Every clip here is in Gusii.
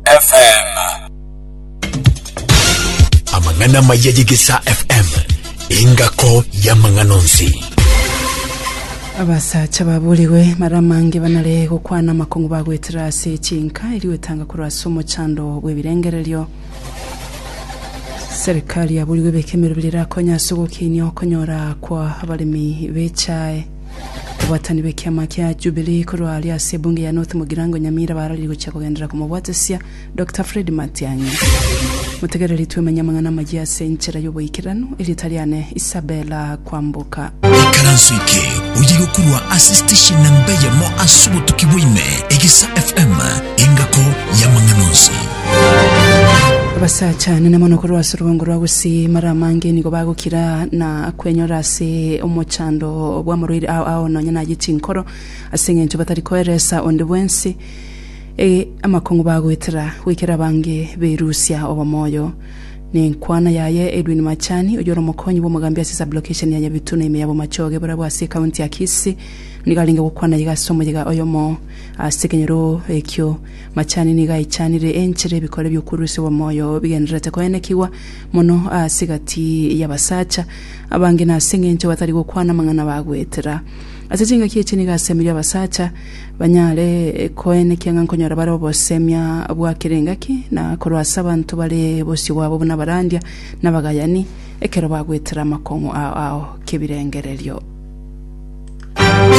FM. Amang'ana amaya y'Egesaa FM, engako y'amang'ana onsi. abasacha baburigwe mara amange banare gokwana amakong'u bagwetera ase chinka eri gwetanga korwa ase omochando bw'ebirengererio serikali yaburigwe ebeke emerobera erakonye ase ogokeinia okonyora kwa abaremi b'echae Obwatani bw'ekiama kia Jubilee korwa aria ase ebunge ya North Mugirango Nyamira bararirie gochia kogenderera komobwatesia Dokita Fred Matiang'i. Motegereri twemenye amang'ana amayia ase enchera y'oboikeranu, erieta riane Isabella Kwamboka. Ikaranso eke oyirwe korwa ase station namba eyemo ase obotuki bwaime, Egisa FM, engako y'amang'ana onsi. Abasacha nene mono korwa ase orobongo rwa gusii, mara amange nigo bagokira na Kwenyora ase omochando bw'amarwaire ao ao nonya nayio chinkoro, ase engencho batari koeresa onde bwensi amakong'u bagoetera, goikera abange berusia obomoyo. Nenkwana yaye Edwin Machani, oyore omokonyi bw'omogambi ase Sub-location ya Nyabitu na ime ya Bomachoge barabwo ase ecounty ya Kisii, nigo arenge gokwana iga ase omoyega oyomo ase ekenyoro ekio. Machani nigo aichanire enchera ebikore bi'okorusia obomoyo bigendererete koenekigwa, mono ase egati y'abasacha abange nase engencho batari gokwana amang'ana bagoetera. Ase chingaki echi nigo asemeria abasacha banyare koen ekiang'a nkonyora bare obosemia bwa kera engaki na korwa ase abanto bare bosio bwabo buna abarandia na abagayani ekero bagoetera amakong'u ao ao kebirengererio.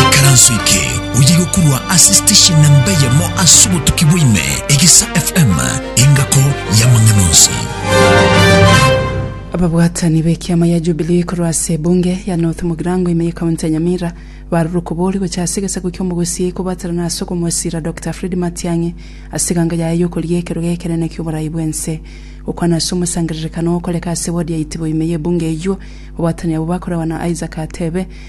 Ekaranso eke oyegokorwa ase station namba eyemo ase obotuki bwa ime, Egesa FM, engako y'amang'ana onsi. Ababwatani b'ekiama ya Jubilee korwa ase ebunge ya North Mugirango ime ye county ya Nyamira barure okobori gocha ase egesaku ki'omogusii kobwatanana ase okomosira Doctor Fred Matiang'i ase eganga yaye yokoria ekerogo ekenene ki'oborai bw'ense. Gokwana ase omosangererekano ogokoreka ase ward ya Itibo ime ye ebunge eyio, babwatani abwo bakoragwa na Isaac Atebe,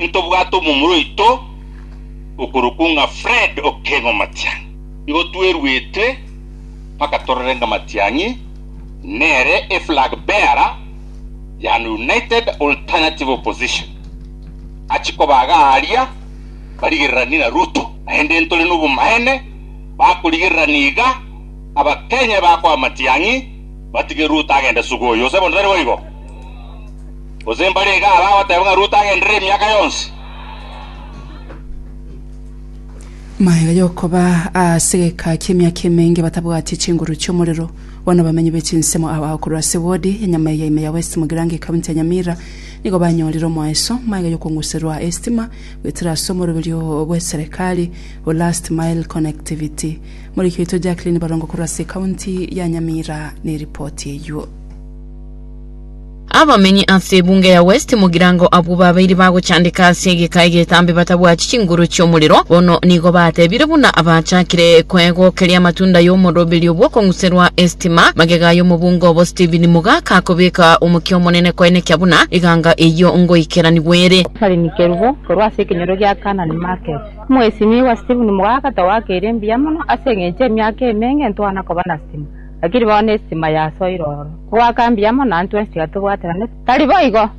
Ntobwate omomura oito okorokwo ng'a Fred Okengo Matiang'i. Nigo tweruetwe mpaka torore ng'a Matiang'i nere e flag bearer ya United Alternative Opposition achie koba iga aaria barigereranie na Ruto. Naende ntore nobomaene bakorigererania iga Abakenya bakoa Matiang'i batige Ruto agende suguyu. Gose bono tari boigo? Gose mbare iga nabo agoteba ng'a Ruto agenderere emiaka yonsi. Amaiga y'okoba ase egeka ki'emiaka emenge batabwati chinguru chi'omorero. Bono abamenyi be chinsemo aba korwa ase wodi ya Nyamaiga ime ya West Mugirango ekaunti ya Nyamira nigo banyorire omoeso maiga y'okong'userwa estima goetera ase omoroberio bw'eserekari o Last Mile Connectivity. Moriki oito Jacqueline Barongo korwa ase ekaunti ya Nyamira neripoti eyuo. Abamenyi ase ebunge ya West Mugirango abwo babeire bagochandeka ase egeka egetambe batabwati chinguru chi'omorero, bono nigo batebire buna abachakire koegokeria amatunda y'omoroberio bw'okong'userwa estima. Magega y'omobunge obo Stephen Mugaka akobeka omokia omonene koenekia buna eganga eyio ngoikeranigwe ere. Caroline Kerubo korwa ase ekenyoro gia Canaan Market. Omwesimigwa Stephen Mugaka, Towakeire mbuya mono ase engencho emiaka emenge ntwana koba na stima. Lakini bono esisima yasoire ororo. Goaka mbuya amo naintwe onsi tiga tobwateranete. Tari boigo!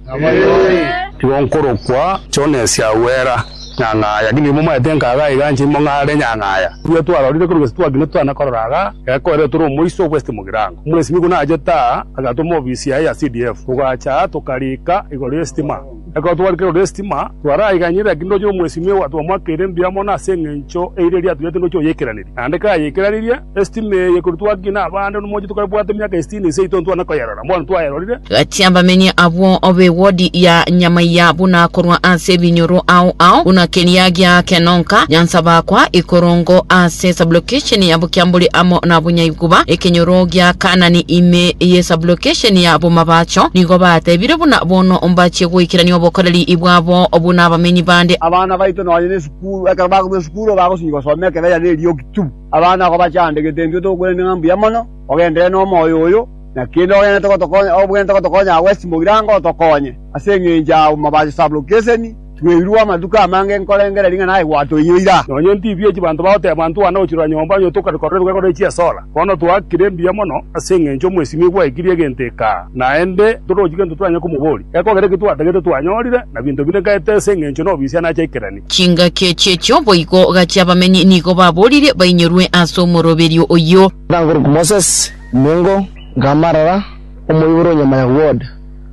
Igo nkorokwa Jones agwera nyang'aya, lakini riria momaete nkaga iga inche imong'are nyang'aya. Riria twarorire korwa gese twagenda twana korora iga, gekoerire tore omoiso West Mugirango. Omwesimiko naachete aa, agatoma ofisi yaye ya CDF. Togacha aa tokariika igoro y'esistima. Ekero twari kerore estima, twaraiganyire, lakini ndoche omwesimigwa twamoakeire mbuya amo nase engencho eira eria atugete ndoche oyeikeraneria. Naende kayeikeranerie, estima eye ekorwa twakinya nabaande nomochie tokaebwate miaka esitini na eseito ntwane koyerora. Mbono twayerorire. Gati abamenyi abwo be wodi ya Nyamaiya buna korwa ase ebinyoro ao ao, buna keria gia Kenonka, Nyansa Bakwa, Ikorongo, ase sublocation ya. kiambori amo nabonyaigwa, ekenyoro gia Kaanani ime ye sublocation ya bomabacho, nigo batebire buna bono mbachie goikerania obokoreri bwabo buna abamenyi bande. Abana baito nonya nesukuru, ekero bakorwa esukuru bagosinyi gosoma ekebecha ne eriogi tu. Abana agwo bachande, Getembia otogokwenerete ng'a mbuya mono, ogenderere nomoyo oyo, na kende ogenderete gotokonya, obwenerete gotokonya agwo ase chimbogirango otokonye, ase engencho ya bomabacho sublocation, Tweirwe amatuko amange nkorengera ring'ana aye gwatoiyo ira. Nonya inti ibiya chibanto bagoteba ntwane gochirora nyomba onye tokarikora erwegoro ne chiesora. Bono twakire mbuya mono ase engencho omwesimi gwaekirie egento eka, naende torochi gento toranye komoboria. Gekogera eki twatagete twanyorire, na binto binde nkaete ase engencho nobisia nache aikeranie. Chingaki echiechio boigo gachia abamenyi nigo baboririe bainyorwe ase omoroberio oyio. Aka nkorokwa Moses Mengo, nkamarara omoibori o Nyamaya Ward,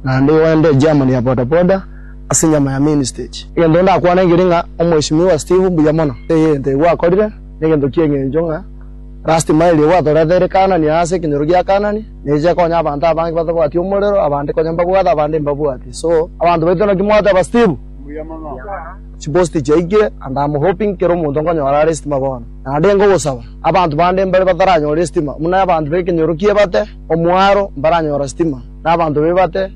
naende oende echairman ya bodaboda. ase enyama ya main stage. Egento ndakwane nkere ng'a Omweshimiwa Steve mbuya mono egento ekio akorire, negento kia eng'encho ng'a last mile ekio atorete ere Kanani aase ekenyoro gia Kanani neeche ekonya abanto abange batabwati omorero abande konya mbabwate abande mbabwati so abanto baito naki mwateba Steve mbuya mono chipost chiaikire and am hoping kera omonto nkonyora are estima bono naende nkogosaba abanto bande mbare bataranyora estima buna abanto bekenyoro kiebate omwaro mbaranyora stima na abanto bebate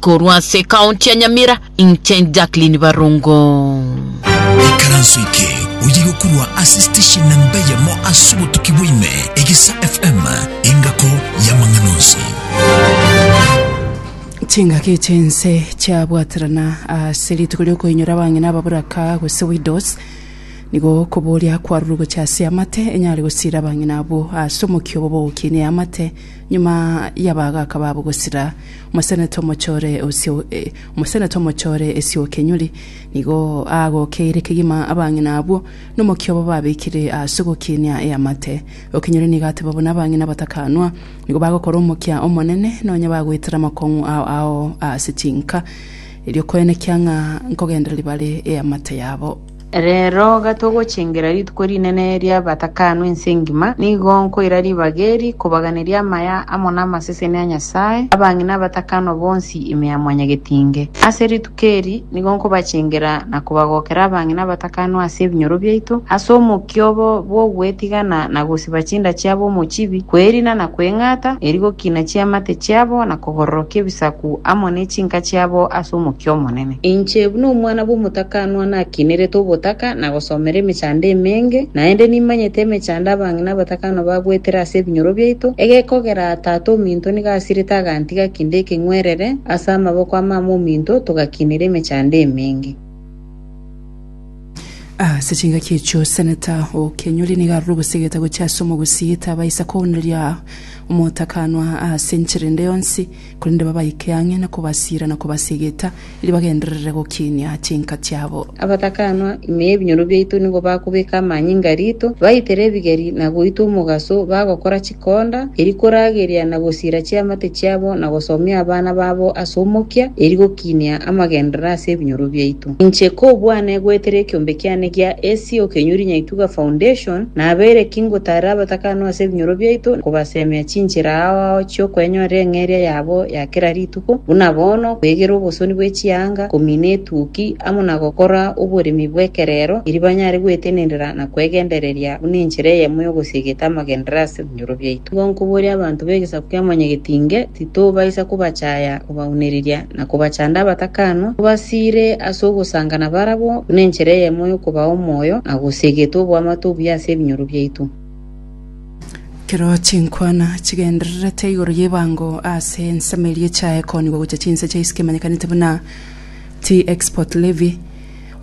Korwa ase ekaonti ya Nyamira, inche Jacqueline Barongo. Ekaranso eke oye gokorwa ase station namba eyemo ase obotuki bwaime, Egesa FM, engako y'amang'ana onsi. Chingaki chense chiabwaterana ase rituko riokoinyora abang'ina ababoraka gose widows, nigo okoboria kwarurwa gochia ase eamate enyare gosiira abang'ina abwo ase omokia obo b'ogokinia eamate Nyuma y'abagaaka babo gosira, omosenete omochore osio, eh, omosenete omochore esio o kenyuri nigo aagokeire kegima abang'ina abwo nomokia obo babekire ase ogokinia eamate. Okenyuri nigo ateba buna abang'ina batakanwa nigo bagokora omokia omonene, nonya bagoetera amakong'u ao ao ase chinka, erio koenekia ng'a nkogendereri bare eamate yabo. Reero iga togochengera rituko rinene ri'abatakanu ense engima, nigo nkoira ribaga eri kobaganeria amaya amo namaseseni a Nyasae, abang'ina abatakanwa bonsi ime ya Mwanyagetinge. Ase rituko eri nigo nkobachengera na kobagokera abang'ina abatakanwa ase ebinyoro biaito, ase omokia obo bw'ogwetigana na gosiba chinda chiabo omochibi, kwerina na kweng'ata, eri gokina chiamate chiabo na kogororokia ebisaku amo ne chinka chiabo ase omokia omonene. Inche buna omwana bw'omotakanwa nakiinerete obotaka na gosomera emechando emenge, naende nimanyete emechando abang'ina abatakanwa bagoetera ase ebinyoro biaito, egekogera tata ominto nigo asirete agantiga kende ekeng'werere ase amaboko a mama ominto, togakiinera emechando emenge. Ase chingaki echio seneta o Kenyori nigo arure obosegete gochia ase omogosi, tabaisa kouneria omotakanwa ase enchera ende yonsi. korende babaike ang'e na kobasiira na kobasegeta, erio bagenderere gokinia chinka chiabo. Abatakanwa, ime y'ebinyoro biaito nigo bakobeka amanyinga rito, baitere ebigeri na goita omogaso, bagokora chikonda, eri korageria na gosiira chiamate chiabo na gosomia abana babo ase omokia, eri Kinia amagenderero ase ebinyoro biaito. Inche kobwane goetera ekiombe kiane gia AC okenyuri nyaituga foundation, nabeire ki ngotaarera abatakanwa ase ebinyoro biaito, kobasemia chinchera ao ao chiokoenyorera eng'eria yabo ya kera rituko, buna bono, kwegera obosoni bwe chianga, komina etuki, amo na gokora oboremi bw'ekerero, erio banyare gwetenenera na kwegendereria buna enchera eyemo y'ogosiegeta amagenderero ase. Ebinchoro biaito gonkobooria abanto b'egesaku kia Mwanyagetinge, titobaisa kobachaya, kobaunereria, na kobachanda abatakanwa, tobasiire ase ogosanga nabarabwo, buna enchera eyemo y'okobaa omoyo, na gose egetwe oboamate obuya ase ebinyoro biaito. Ekero chinkwana chigendererete igoro y'ebango ase ensemo eria echae koonigwa gochia chinse chia ise kemanyekanete buna T. export levy,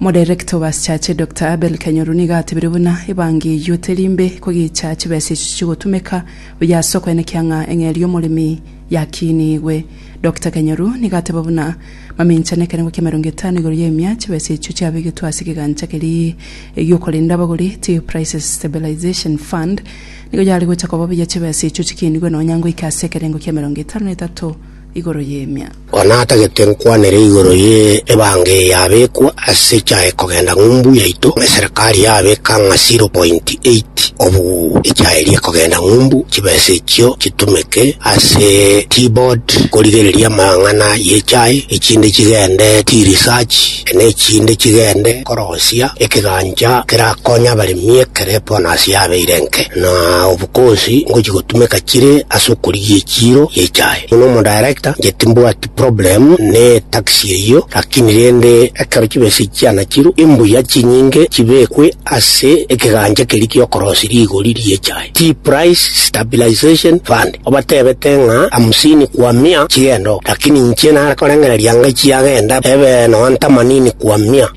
Omodirector o Basichache, Doctor Abel Kanyoru nigo atebire buna ebangi eyio teri mbe kogicha chibesa echio chigotumeka buya ase okoenekia ng'a eng'eria omoremi yakinigwe. Doctor Kanyoru nigo ateba buna mamincha nekerengo kiamerongo etano igoro y'emia chibesa echio chiabegetwe ase ekegancha keria giokorenda abagori ti Prices Stabilization Fund nigo yare gocha koba buya chibesa echio chikinigwe nonya ngoika ase ekerengo kiamerongo etano na etato igoro y'emiaka. Ore natagete nkwanere igoro ye ebanga eye yabekwa ase echaye kogenda ng'umbu yaito eserekari yabeka ng'a 0.8 obu echaye eria ekogenda ng'umbu chibesa echio chitumeke ase T-board korigereria amang'ana y'echaye echinde chigende T-research na echinde chigende korosia ekegancha kerakonye abaremi ekero ebonus yabeire enke na Bokonsi ngochia gotumeka chire ase okorigia echiiro y'echae. Buna omodaerekta, inche timbwati problem ne taxi eyio, lakini rende ekero chibesa echi chianachirwe, imbuya chinyinge chibekwe ase ekegancha keria gi'okorosia rigori ri'echae, Tea Price Stabilization Fund. Obatebete ng'a hamsini kwa mia chigende oo, lakini inche nare korengereria ng'a chiagenda ebe nonya themanini kwa mia.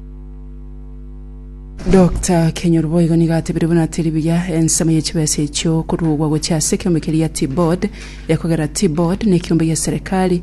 Doctor Kenyoru boigo nigo atebire buna teri buya ensemo ye chibesa echio koruogwa gochia ase ekeombe keria T-Board ekogera T-Board nekeombe gia serikali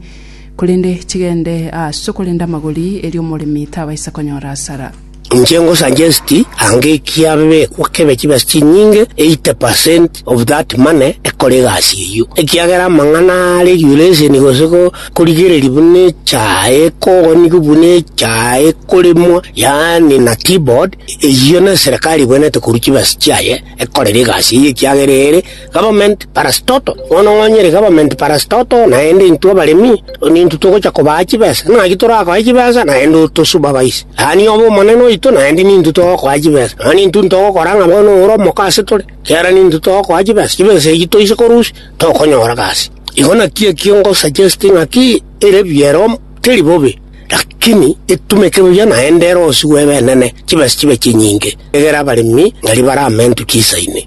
korende chigende ase okorenda amagori erio omoremi tabaisa konyora asara. Inche ngo suggest ange kiabekwa kebe chibesa chinyinge 80% of that money ekore egasi eyio ekiagera amang'ana a regulation gose ko Korigereria buna echae ekogonigwa buna echae ekoremwa, yaani na keyboard, eyio neserekari ebwenerete korwa chibesa chiaye ekorera egasi eyio ekiagera ere government parastatal. Bono onye ere government parastatal naende intwe abaremi nintwe togocha kobaa chibesa. Naki torakoe chibesa naende otosupervise. Yaani obe omonene oito naende nintwe togokoa chibesa. Nonya nintwe ntogokora ng'a bono ore omoko asetore, ekiagera nintwe togokoa chibesa. Chibesa echio toise korusia. tokonyora gasi. Igo nakio ekio ngosaggesti ng'aki ere buya ero teri bobe, lakini etumeke buya naende ero osigwe ebenene, chibesa chibe chinyinge, egere abaremi ng'aria baramentu chisa ime.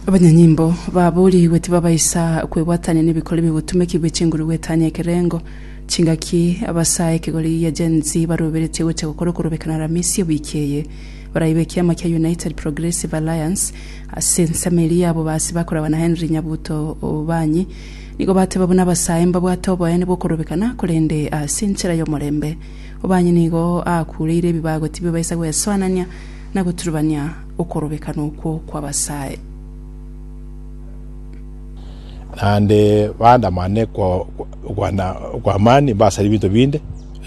Abanyanyimbo baboorigwe tibabaisa kwebwatania n'ebikori bigotumekigwa chinguru gwetania ekerengo. Chingaki abasae ekegori gia Gen Z baroberetie gocha gokora okorobekana Aramisi ewiki eye. Baraibe ekiama kia United Progressive Alliance ase ensemo eria ya bobaasi bakoragwa na Henry Nyabuto Obanyi nigo bateba buna abasae mbabwate oboene bw'okorobekana korende ase enchera y'omorembe. Obanyi nigo akureire ebibago tibibaisa gwesoanania na goturubania okorobekana okwo kw'abasae. Naende baandamane kwa amani, basare ebinto binde.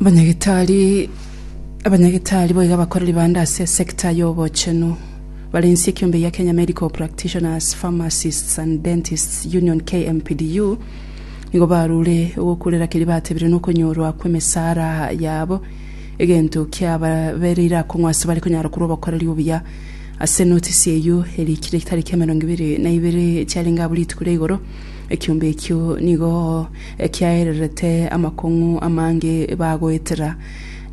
Abanyagitari abanyagitari boiga abakoreri bande ase esecta ya obochenu bare inse ekiombe gia Kenya Medical Practitioners, Pharmacists and Dentists Union, KMPDU, nigo barure ogokurera keria batebire na okonyorwa kw'emesara yabo egento kiababereire akong'u ase bare konyara korwa obokoreri obuya. Ase enotisi eyio erikire etariki emerongo ebere na ibere chiarenge abwo rituko ria igoro, ekiombe ekio nigo ekiaererete amakong'u amange bagoetera,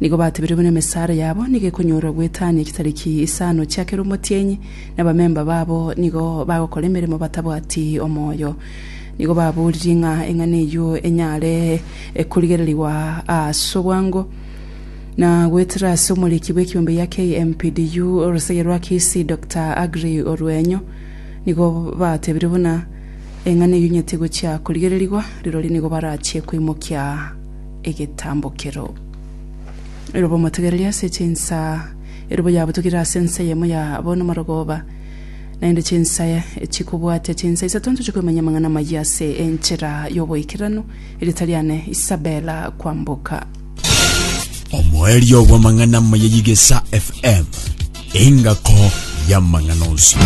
nigo batebire buna emesara yabo nigo ekonyorwa gwetania chitari ki isano chia kera omotienyi, na abamemba babo nigo bagokora emeremo batabwati omoyo. Nigo baboririe ng'a eng'ana eyio enyare ekorigererigwa ase obwango, na goetera ase omoriki bw'ekiombe gia KMPDU, orosege rwa Kisii, Doctor Aggrey Oruenyo, nigo batebire buna, Eng'ana eyio nyeti gochia korigererigwa, rirorio nigo barachie koimokia egetambokero. Erobo omotegereri ase chinsa, erobo yabutugire ase ensa eyemo ya abana amarogoba, naende chinsa chikobwatia chinsa isato inche chikoimanya amang'ana amayia ase enchera y'oboikeranu, erio tari ane Isabella kwamboka. Omoerio bw'amang'ana amaya y'Egesa FM, engako y'amang'ana onsi.